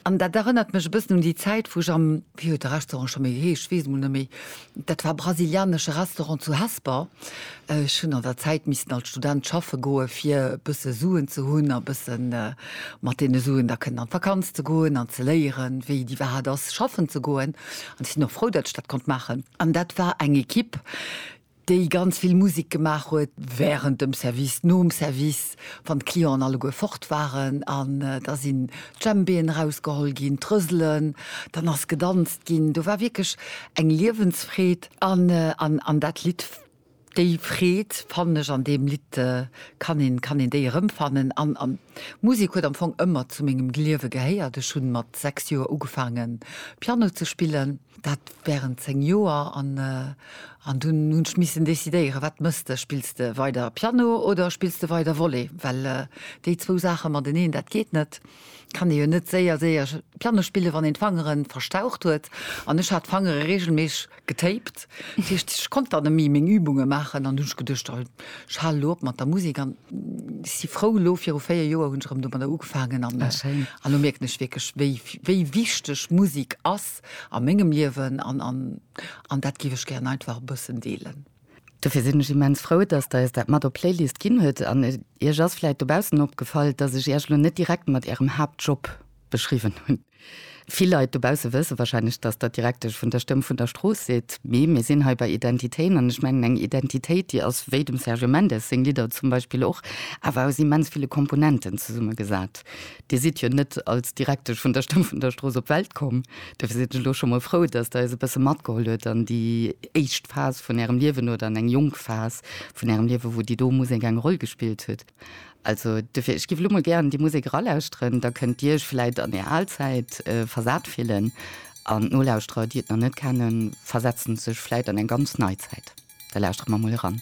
An dat erënnert mech e bëssen un déi Zäit, wou ech am, wéi huet de Restaurant scho méi geheescht, ech weess emol net méi, dat war e brasilianesche Restaurant zu Hesper, ech hunn an der Zäit missen als Student schaffe goe fir e bësse Suen ze hunn a e bësse mat deene Suen da kënnen an d'Vakanz ze goen an ze léieren, wéi déi Wahrheit ass, schaffen ze goen. An ech sinn och frou, datt ech dat konnt maachen. An dat war eng Ekipp, déi ganz vill Musek gemaach huet während dem Service, nom Service, wann d'Clienten alleguer fort waren, an da sinn d'Djembéen erausgeholl ginn, d'Rëselen, dann ass gedanzt ginn, do war wierklech eng Liewensfreed. An dat Lidd, déi Freed fannen ech an deem Lidd, kann een, kann een déi erëmfannen. An d'Musek huet am Fong ëmmer zu mengem Gliewe gehéiert. Ech hunn mat 6 Joer ugefaangen Piano ze spillen. Dat während 10 Joer an an dunn hunn ech missen decidéieren, wat mëss de? Spills de weider Piano oder spills de weider Volley? Well déi zwou Saache mateneen, dat geet net. Kann ee jo net séier, séier Piano spillen, wann een d'Fangere verstaucht huet. An ech hat d'Fangere reegelméisseg getaped. Dat heescht, ech konnt dann net méi meng Übunge maachen. An dunn hunn ech geduecht, oh, ech halen elo op mat der Musek. An ech si frou, elo viru 4 Joer hunn ech erëm domadder ugefaangen. An elo mierken ech wierklech, wéi, wéi wichteg Musek ass. passt a mengem Liewen an an dat géif ech gären einfach e bëssen deelen. Dofir sinn ech immens frou, dass Der Iech dat mat op d'Playlist ginn hutt. An Iech ass vläicht dobaussen opgefall, dass ech Iech elo net direkt mat Ärem Haaptjob beschriwwen hunn. Vill Leit dobausse wësse wahrscheinlech, dass Der Direktesch vun der Stëmm vun der Strooss sidd, mee mir sinn hei bei Identitéen an ech mengen eng Identitéit, déi ass, wéi dem Sergio Mendes seng Lidder zum Beispill och, awer aus immens ville Komponenten zesummegesat. Dir sidd jo net als Direktesch vun der Stëmm vun der Strooss op d'Welt komm. Dofir sinn ech elo scho mol frou, dass Der eis e bësse matgeholl hutt an déi éischt Phas vun Ärem Liewen oder an eng jonk Phas vun Ärem Liewen, wou déi do Musek eng Roll gespillt huet. Also dofir, ech giff elo mol gären déi Musek eralauschteren, da kënnt Dir Iech vläit an Är al Zäit versat fillen an d'Nolauschterer, déi et nach net kennen, versetzen sech vläit an eng ganz nei Zäit. Da lauschtere mer mol eran.